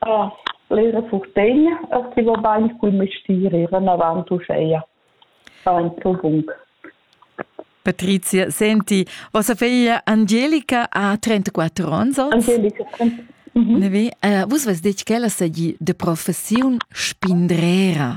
Ah, l'eira furtegna eir chi va bain cul mestier eir inavant uscheja. Aintro bun. Patrizia, senti, vostra figlia Angelica ha 34 ons oz? Angelica, mhm. Ne vi? Uh, vus vus detg ch'ella sagi de professiun spindrera.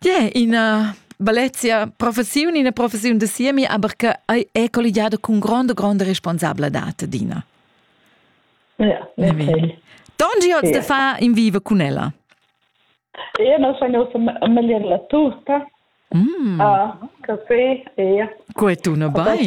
Yeah, ina Valencia professiun, ina professiun da siemi, aber che è colligiata con grande, grande responsabilità, Dina. Ja, natürlich. Dongi oz de fa in viva con ella? Io non sono familiar la turca. Mm. Uh, café, ja. Come tu, no vai?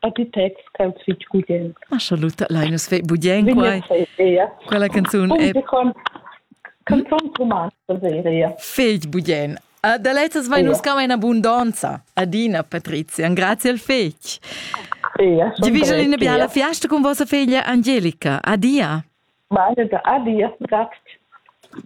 architects ch'els fitg gugent. Ma scha lutta lein nus fei budien quai. Quella canzun è canzun romanza seria. Fegl budien. Da lezzas vai nus cama in abundanza. Adina Patrizia, grazie al fegl. Di vigel in biala fiasta con vostra figlia Angelica. Adia. Meine Adia, grazie.